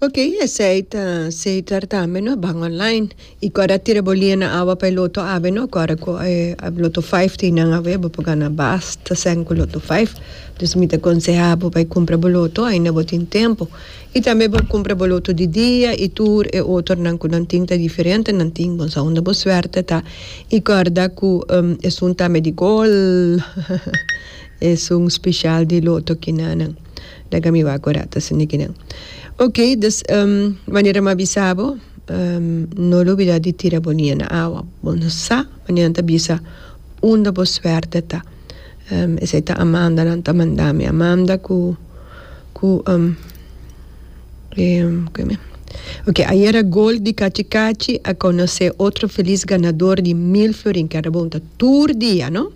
Ok esei ta seker tambe no ban online y ora a tira bo lia na awa pa e loto awe no ora cu loto five tin nan awe bo por gana basta seng cu loto five dus mi ta conseha bo bai cumpra bo loto aina bo tin tempo y tambe bo cumpra bo loto di dia y tur e otro nan cu nan tin ta diferente nan tin bo sa unda bo suerte ta y corda cu esun tambe di golhhhhha esun special di loto kinan. Laga mi wak ora ta sende kinan. Ok dus manera mi a bisa bo no lubida di tira bo nia na awa bo no sa manera nan ta bisa unda bo suerte ta esei ta Amanda nan ta manda mi Amanda ku ku ok ayera gol di kachi kachi a konosé otro felis ganador di mil florin kèn rabunta tur dia no.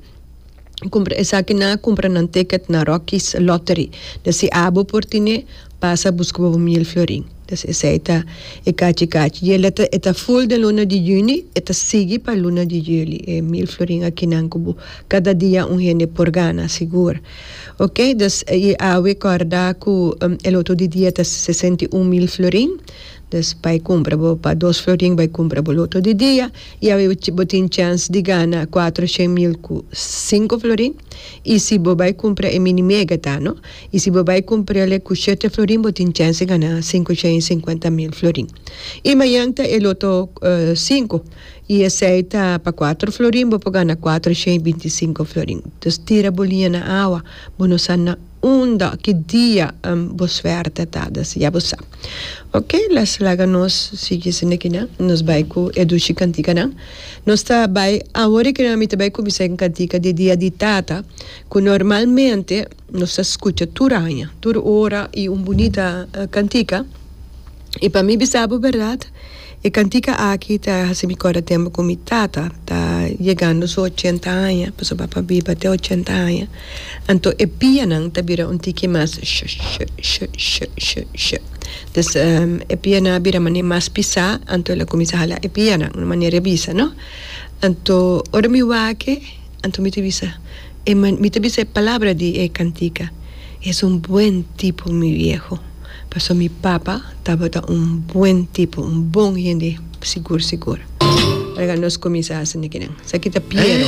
Cumpra esaki nan a cumpra nan ticket na Rocky's Lottery. Dja si abo por tine, pasa a busca pa bo mil florin. Dja esai ta e cachi cachi. Dja el e ta full den luna di juni, e ta sigui pa luna di juli. E mil florin akinan cu bo cada dia un hende por gana, sigur. Ok, dus, y awe corda cu el otro di dia ta sesenta y un mil florin. Pues bai cumpra bo pa dos florin bai cumpra bo loto di dia y awe bo tin chance di gana cuatro shen mil cu cinco florin y si bo bai cumpra e mini mega ta no y si bo bai cumprale cu shete florin bo tin chance di gana cinco shen y cincuenta mil florin y mayan ta e loto cinco y esey ta pa cuatro florin bo por gana cuatro shen y binti y cinco florin tus tira bo liña na awa bo no sa. Unda ki dia bo suerte ta dus ya bo sa ok las laga nos sigui sende kinan nos bai ku e dushi kantikanan nos ta bai awor kinan mi ta bai kuminsá e kantika di dia di tata ku normalmente nos ta skucha tur aña tur ora i un bunita kantika i pa mi bisa bo bèrdat. E cantica aki ta haci mi corda tempo cu mi tata ta yegando su ochenta aña, pasobra a biba te ochenta aña, anto e pianan ta bira un tiki mas sh-sh-sh-sh-sh-sh. Dus e pianan a bira manera mas pisa, anto el a cuminsa hala e pianan na manera e bisa, no? Anto ora mi wake, anto mi ta bisa, mi ta bisa e palabra di e cantica, Es un buen tipo mi vieho. Paso mi papa tabata un buen tipo, un bon hende sigur sigur. Rega nos cuminsa haci nekinan. Esaki ta Piero.